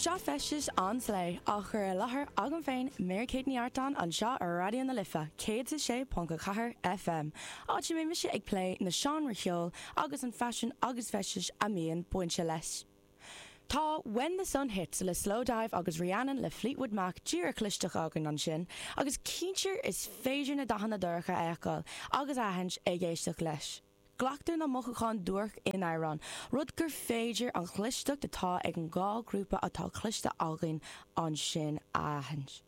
Seo Feisteas an Slay, á chur i láthair agam féin, Mary Kate Ní Artáin, anseo ar Raidió na Life 106.4 FM, áit a mbeidh mise ag plé na seánra cheoil agus an faisean agus feisteas a mbíonn bainte leis. Tá When The Sun Hits le Slowdive agus Rhiannon le Fleetwood Mac díreach clisteach againn ansin, agus cinnte is féidir na dathanna dorcha a fheiceáil agus a aithint ag éisteacht leis. Glactha na mothúcháin duairc in amhráin, rud gur féidir ón gcloisteacht atá ag an dhá ghrúpa atá cloiste againn ansin a aithint.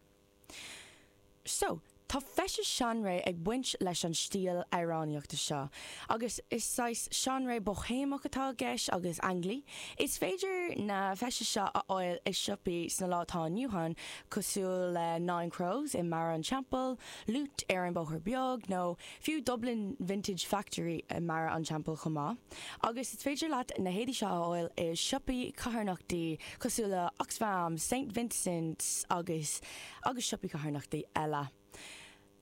So, tá feisteas seanré ag baint leis an stíl amhránaíochta seo, agus is saghas seanré Boihéamach atá i gceist agus ainglí. Is féidir na feistis seo a fháil i siopaí sna lá atá inniu ann, cosúil le Nine Crows i mBarra an Teampaill, Loot ar an Bóthar Beag, nó. Fiú Dublin Vintage Factory i mBarra an Teampaill chomh maith. Agus is féidir leat na héadaí seo a fháil i siopaí carthanachtaí cosúil le Oxfam, Saint Vincent's agus agus siopaí carthanachtaí eile.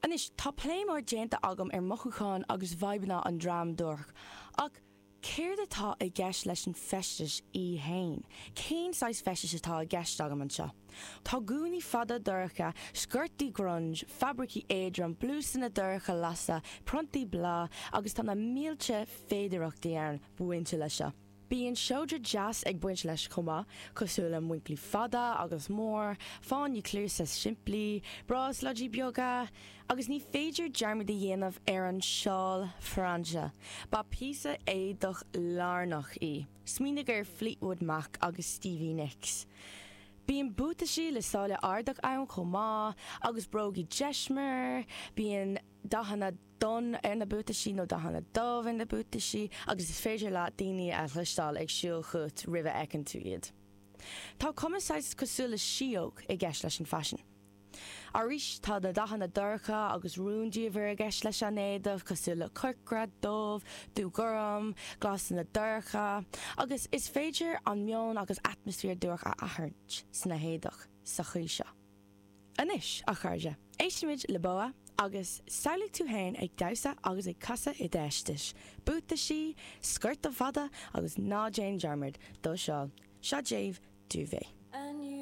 Anois, tá plé mór déanta agam ar mhothúcháin agus bhfadhbanna an dream duairc, ach Céard atá i gceist leis an bhfeisteas í fhéin? Cén saghas feisteas atá i gceist agam anseo? Tá gúnaí fada dorcha, sciortaí grunge, fabraicí éadrom, blúsanna dorcha lása, priontaí bláth agus tá na mílte féidearthachtaí ann bainte leis seo. Bíonn seodra deas ag baint leis chomh maith, cosúil le muinclí fada agus mór, fáinní cluasa simplí, bráisléidí beaga, Agus ní féidir dearmad a dhéanamh ar an seál frainse. Ba phíosa éadach lárnach í. Smaoinigh ar Fleetwood Mac agus Stevie Nicks. Bíonn buataisí le sáile ardach ann chomh maith, agus brógaí deismir. Bíonn dathanna donn ar na buataisí, nó dathanna dubh ar na buataisí, agus is féidir leat daoine a chloisteáil ag siúl chugat roimh a fheiceann tú iad. Tá cuma saghas cosúil le síóg i gceist leis an faisean. Arís, tá na dathanna dorcha agus rúndiamhair i gceist leis an éadach, cosúil le corcra, dubh, dúghorm, glasanna dorcha, agus is féidir an meon agus atmaisféar duairc a aithint sna héadach sa chaoi seo. Anois, a chairde, éistfimid le Boa agus samhlaigh tú fhéin ag damhsa agus ag casadh i d'fheisteas, buataisí, sciorta fada agus ná déan dearmad do sheál, seo daoibh Duvet.